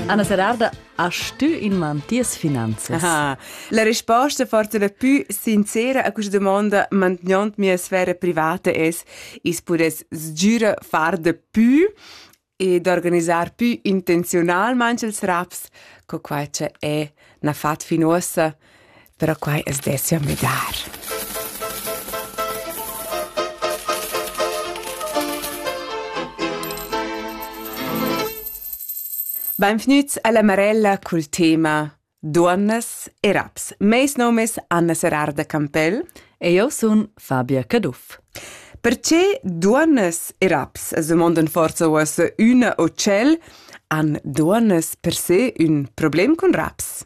Anna Serarda, hast du in man ties finanzas? Aha. La risposta fortuna più sincera a questa domanda mantenendo mia sfera privata es is pudess sgiura far de più e d'organizzar più intenzionalmente ils raps, co quai che è na fat fin uossa però quai as dessia müdar. Benvgnüts alla Marella cul tema Duonnas e raps. Meis nom es Anna Serarda Campell. E io sun Fabia Caduff. Perché duonnas e raps, as domondan forza uossa üna o tschel, han duonnas per se ün problem cun raps?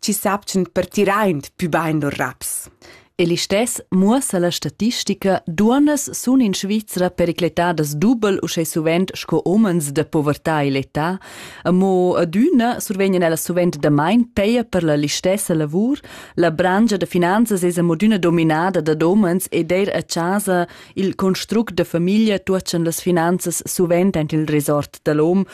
chi sapchan per tiraint pü bain lur raps. E listess muossa la statistica, duonnas sun in Svizra pericletadas dubel uschè suvent sco homens da povertà e l'età, amo adüna survegnan ellas suvent damain peia per la listessa lavur, la brangia da finanzas es amodüna dominada dad homens ed eir a chasa il construct da famiglia tuotschan las finanzas suvent aint il resort da l'hom,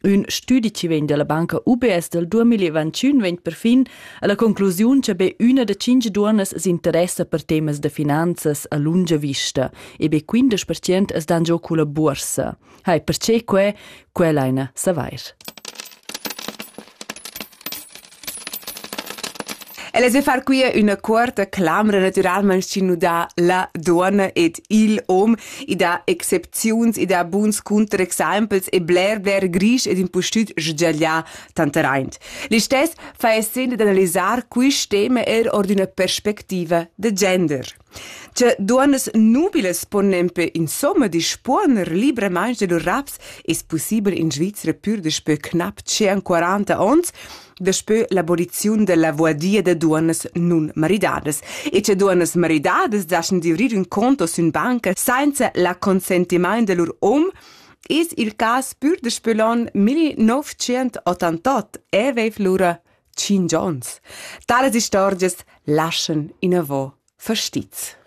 Ün stüdi chi vegn dalla banca UBS del 2021 vegn perfin alla conclusiun che be üna da cinque duonnas s'interessa per temas da finanzas a lunga vista e be 15% es dan giò culla buorsa. Hai, perché que? Quella eine savair. El es ü far quia üna cuorta clamra natüralmaing chi nu dà la duonna ed il hom. I dà excepziuns, i dà buns cunterexaimpels e bler bler grisch ed impustüt sgiaglià tanteraint. Listess fa esser d'analisar quist tema eir our d'üna perspectiva da gender. Tge duonnas nubilas pon nempe insomma dispuoner libramaing da lur raps es pussibel in Svizra pür daspö cnap 41 ons daspö l'aboliziun da la voadia da duonnas nun maridadas e che duonnas maridadas daschan divrir ün conto sün banca sainza la consentimaint da lur um es il cas pür daspö l'on 1988 e veiv lura tschient ons. Talas istorgias laschan inavò fastiz.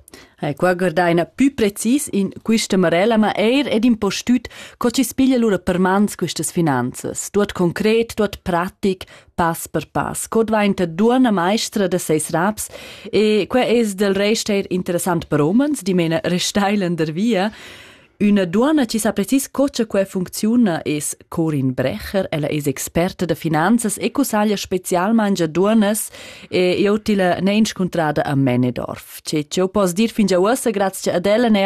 E qua guardaina pü precis in quista marella, ma eir ed in po stüt co chi spiglia lura per mans quistas finanzas, tuot concret, tuot pratic, pass per pass. Co dvainta duonna maestra da seis raps e que es del rest eir interessant per homens, dimena restailan der via. Üna duonna chi sa precis co cha quai funcziuna es Corin Brecher. Ella es experta da finanzas e cussaglia specialmaing a duonnas e eu tilla n'he inscuntrada a Mänedorf. Che, che eu poss dir fingià uossa grazcha ad ella n'he